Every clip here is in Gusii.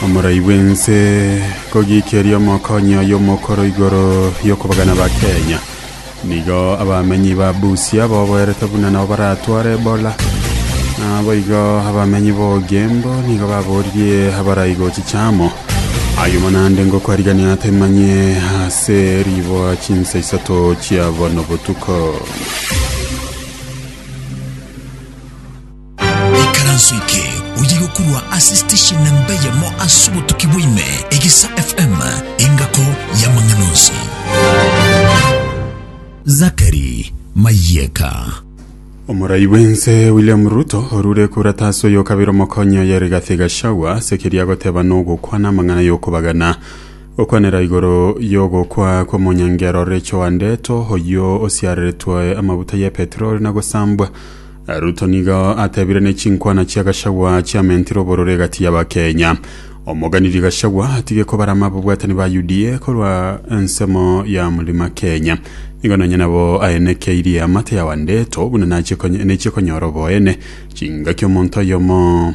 Omorai bw'ense kogiikeria omokonyi oye omokoro igoro y'okobagana ba Kenya. Nigo abamenyi ba Busia boboerete buna nabo baratware Ebola. Naboigo abamenyi b'Ogembo nigo baboririe abarai gochicha amo. Ayumo nande ngokwarigania atemanye ase riboa chinsa isato chia bono botuko. Ekaranso eke oye gokurwa ase station namba eyemo ase obotuki bwaime Egisa FM engako y'amang'ana onsi. Zakari Mayeka. Omorai bw'ense William Ruto orure kura tasi oyo kabere omokonyi oye Rigathi Gachagua ase keria agoteba nogokwana amang'ana y'okobagana gokwanera igoro y'ogokwa kw'omonyangero Rachel Wandeto oyio osiareretwe amabuta y'epetroli na gosambwa Na Ruto nigo atebire ne chinkwana chia Gachagua chiamentire obororo egati y'Abakenya. Omoganiri Gachagua atige kobarama ababwatani ba UDA korwa ensemo ya Mlima Kenya. Nigo nonya nabo aenekeirie amate ya Wandeto buna nachie konya- nechie konyora oboene chingaki omonto oyomo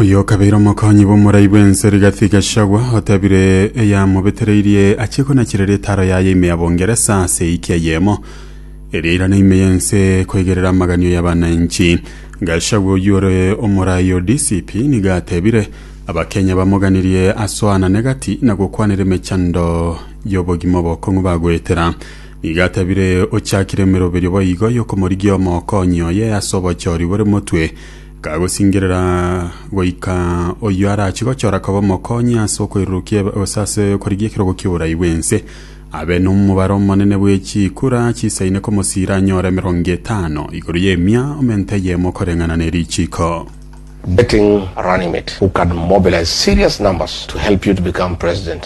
Oyo okabeire omokonyi bw'omorai bw'ense rigathi Gachagua otebire eyamobetereirie achie konachirera etaro yaye ime ya Bongeresa ase ewiki eyemo eria irana ime y'ense koigerera amaganio y'abananchi. Gachagua oyio ore omorai o DCP nigo atebire abakenya bamoganirie asoanane gati na gokwanera emechando y'obogima obokong'u bagoetera. Nigo atebire ochakire emeroberio boigo y'okomorigia omokonyi oye ase obochori bore motwe Kagosingerera goika oyio arachie gochora koba omokonyi ase okoirurukia ebe- gose ase okorigia ekerogo ki'oborai bw'ense, abe nomobaro omonene bwe chikura chisaine komosiira anyore emerongo etano igoro y'emia omenta eyemo koreng'ana ne richiko. Betting Runnymede who can mobilize serious numbers to help you to become president.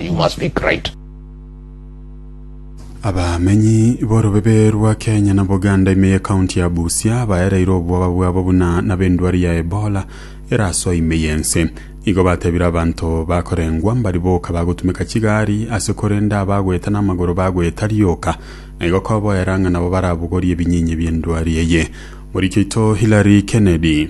You must be great. Abamenyi b'orobebe rwa Kenya na Buganda ime y'ekaunti ya Busia baereire obwoba bwabo buna nab'endwari ya Ebola erasoa ime y'ense. Igo batebire abanto bakorengwa mbari boka bagotumeka chigari ase korenda abagoeta namagoro bagoeta rioka na igo koboera ng'a nabo barabogorie ebinyinya bi'endwari eye. Moriki oito Hillary Kennedy.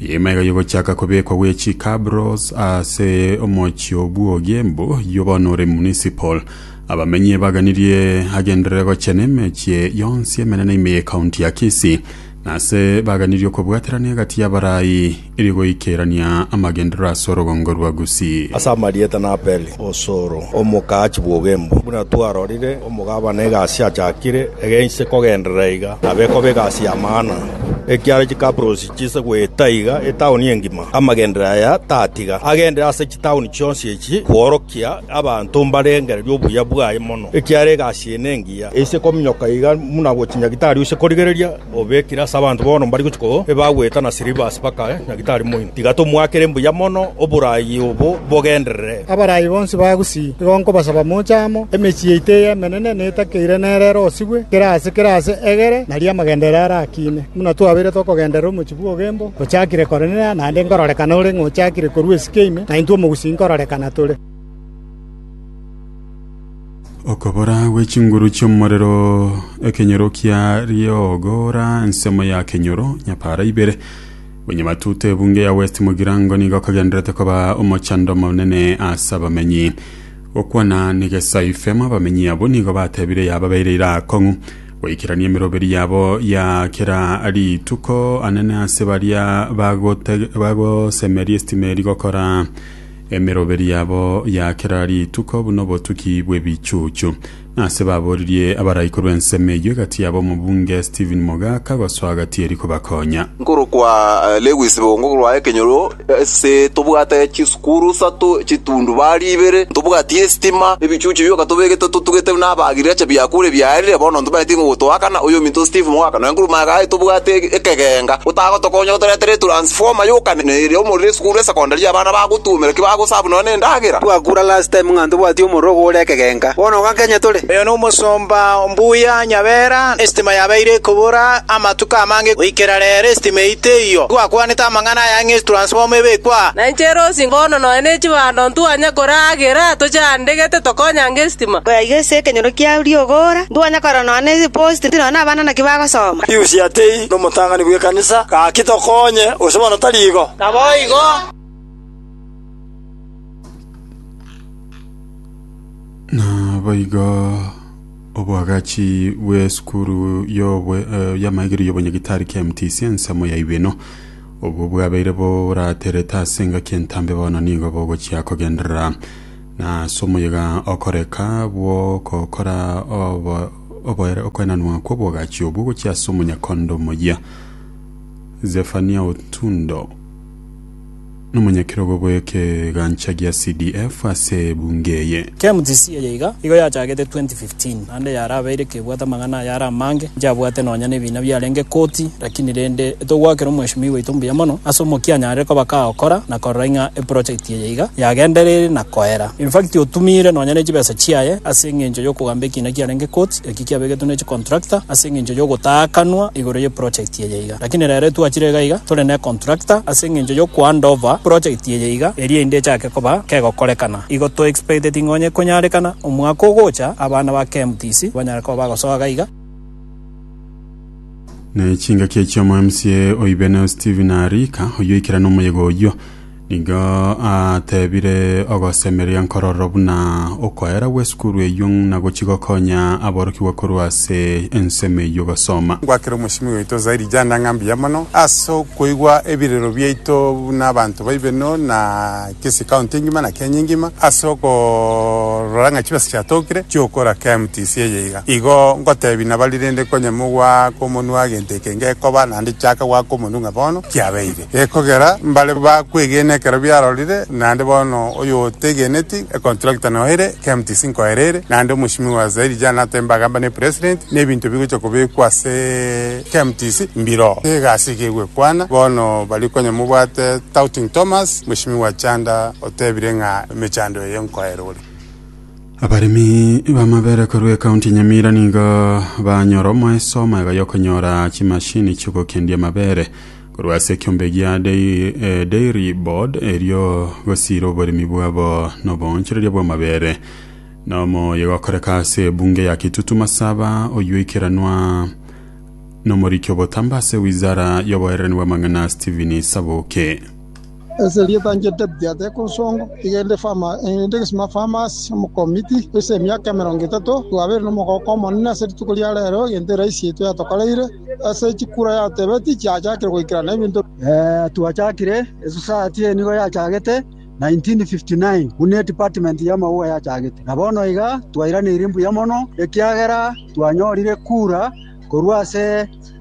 Eema ero yogochaka kobekwa gwe chicabros ase omochie o bwogie mbu yo bono ore municipal. Abamenyi ebaganirie agenderere gochia nemechie yonsi emenene ime ye county ya Kisii na ase baganirie okobwaterana egati y'abarai erio goikerania amagenderero ase orogongo rwa Gusii. Ase amarieta na Apeli Osoro, omokaa chibwogie mbu. Buna twarorire, omogabana egasi achakire, egeinse kogenderera iga nabe ekoba egasi y'amang'ana. Ekiara chicabros chiise goeta iga etaoni engima, amagenderero aya tatiga agendire ase chitaoni chionsi echi kworokia abanto mbarengererie obuya bwaye mono, ekiagera egasi eye nengiya, eise kominyoka iga buna gochia nyagitari ose korigereria obekire ase abanto bono mbari gochia koo ebagoeta na silivasi bakae nyagitari moino. Tiga tomoakere mbuya mono oboraai obo bogenderere. Abaraai bonsi ba Gusii, igo nkobasaba moche amo, emechie yaito eye emenene netakeire nere ere osigwe, kera aase kera aase egere, nario amagenderero arakiine. Buna twabeirete okogenderera omochie bw'ogembo ochakire Kornelio, naende nkororekana ore ng'a ochakire korua esike ime, na intwe omogusii nkororekana tore. Okobora gwe chinguru chi'omorero, ekenyoro kia riogora, ensemo ya kenyoro, nyapaara ibere. Bonyamatuta ebunge ya West Mugirango nigo okagenderete koba omochando omonene ase abamenyi. Gokwana ni Gesai Fema abamenyi abwo nigo batebire yababeire ira akong'u. Goikerania emeroberi yabo ya kera rituko, anene ase baria bagote- bagosemeria esitima eri gokora emeroberi yabo ya kera rituko buna obotuki bw'ebichuchu. Nase baboririe abaraikuru ensemo eyio egati yabo omobunge Stephen Mogaka gosoa gati eri kobakonya. Nkorokwa eh, Lewis Bongo korwa ekenyoro Ase tobwate chisukuru isato, chitundubari ibere, ntobwati esitima, ebichuchu bioka tobegete totugete buna abagirigacha biakure biarire, bono ntobaeti ng'a ogotoakana, oyominto Steve moaka nonya korwa magare tobwate ekegenga otagotokonya otoretere etransformer yoka na ere omorero esukuru esecondary abana bagotuomera ki bagosabu nonya na endagera. Twakura last time ng'a ntobwati omorero ogokora ekegenga, bono iga Kenya tore. Oyo nomosomba mbuya Nyabera, esitima yabeire ekobora amatuko amange goikera rero esitima eyio teiyo. Twakwanete amang'ana. na ayang'e etransfomu ebekwe aa. Na inche Rosi mbono nonya ne chibando ntwanye koragera tochandegete tokonyange esitima. Koyaiga ase ekenyoro kia riogora, ntwanye korora nonya ne eposti nonya nabana naki bagosoma. Piusi Atei nomotang'ani bw'ekanisa, gaki tokonye, gose bono tari igo? Naboigo. Naboigo. Oboagachi bw'esukuru y'amaigerio y'obonyagitari kia MTC ensemo ya ibino, obwo bwabeire boraterete ase engaki entambe bono nigo bogochia kogenderera na ase omoyega okoreka bw'ogokora okoenanwa kw'oboagachi obwo gochia ase omonyakondo omoyia Zephania Otundo. Nomonyakerogo bw'ekegancha gia CDF ase ebunge eye. KMTC eye iga igo yachagete 2015 naende yarabeire ekebwate amang'ana ayare amange nchiabwate nonya nebiina biarenge koti lakini rende etogoakera omweshimiwa oito mbuya mono ase omokia anyarire koba kagokora na korora ing'a eproject eye iga yagendereire na koera infact otumiire nonya nechibesa chiaye ase engencho yokogamba ekiina kiarenge koti eki kiabegetwe nechicontractor ase engencho yogotakanwa igoro yeproject eye iga. Lakini rero etwachire iga iga tore ne contractor ase engencho yo ko hand over project eye iga eria inde echake koba kegokorekana. Igo to expecteting onye konyarekana omwaka ogocha abana ba KMTC banyare koba bagosoa gaiga. Ne chingaki echio omo mca o Ibeneo Stephen Arika, oyio oikerane omoyega oyio, Nigo ateebire ogosemeria nkororo buna okoera gw'esukuru eyio ng'na gochia gokonya aborokigwa korwa ase ensemo eyio gosoma. Ngwakere omochimi oito zaidi janda ng'a mbuya mono ase okoigwa ebirero biaito buna abanto baibeno na kisi county engima na Kenya engima ase okorora ng'a chibesa chiatokire chiokora KMTC eye iga. Igo ngotebi nabari rende konye mogwaka omonwa gento eke ngekoba nande chaka gwaka omonwa ng'a bono kiabeire. Gekogera mbare bakwegene ekero biarorire, naende bono oyotegeneti econtractor nao ere, KMTC nkoa ere ere, naende omochimi wa zairi jana atembe agamba ne president, na ebinto bigocha kobekwa ase KMTC mbiro egasi iga egwekwana, bono baria konya mobwate Touting Thomas, mochimi wa Chanda otebire ng'a emechando eye nkoa ere ore. Abaremi b'amabere korwa ekaunti ya Nyamira nigo banyora omoeso omoegoy'okonyora chimashini chi'ogokendia amabere Korwa ase ekiombe gia Dairy Board erio gosiira oboremi bwabo noboonchoreria bw'amabere. Na omoyo gokoreka ase ebunge ya Kitutu Masaba oyio oikeranwa nomoriki obotambe ase wizara y'oboererani bw'amang'ana Stephen Saboke. Ase erieta inche David ateeka ensongo, iga inde Fama, inde egesima Famas, omokomiti, goisa emiaka emerongo etato, twabeire nomogooko omonene ase rituko ria reero, egento eraisi yaito yatokoreire, ase chikura yatebeti chiachakire goikerana ebinto. Twachakire esosayati eye nigo yachagete 1959 buna edepartment y'amauga yachagete, na bono iga twairaneiri mbuya mono ekiagera twanyorire kura korwa ase.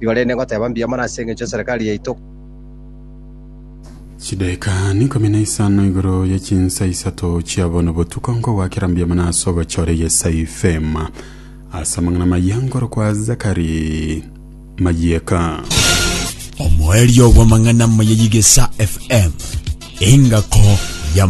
Igoro ere negoteba mbuya mono ase engencho y'eserekari yaito. Chidaeka n'ikomi na isano igoro ye chinsa isato chia bono botuko nkogoakera mbuya mono ase ogochora egesa ifema ase amang'ana maya nkorokwa Zakari Mayieka. Omoerio bw'amang'ana maya y'egesa FM, engako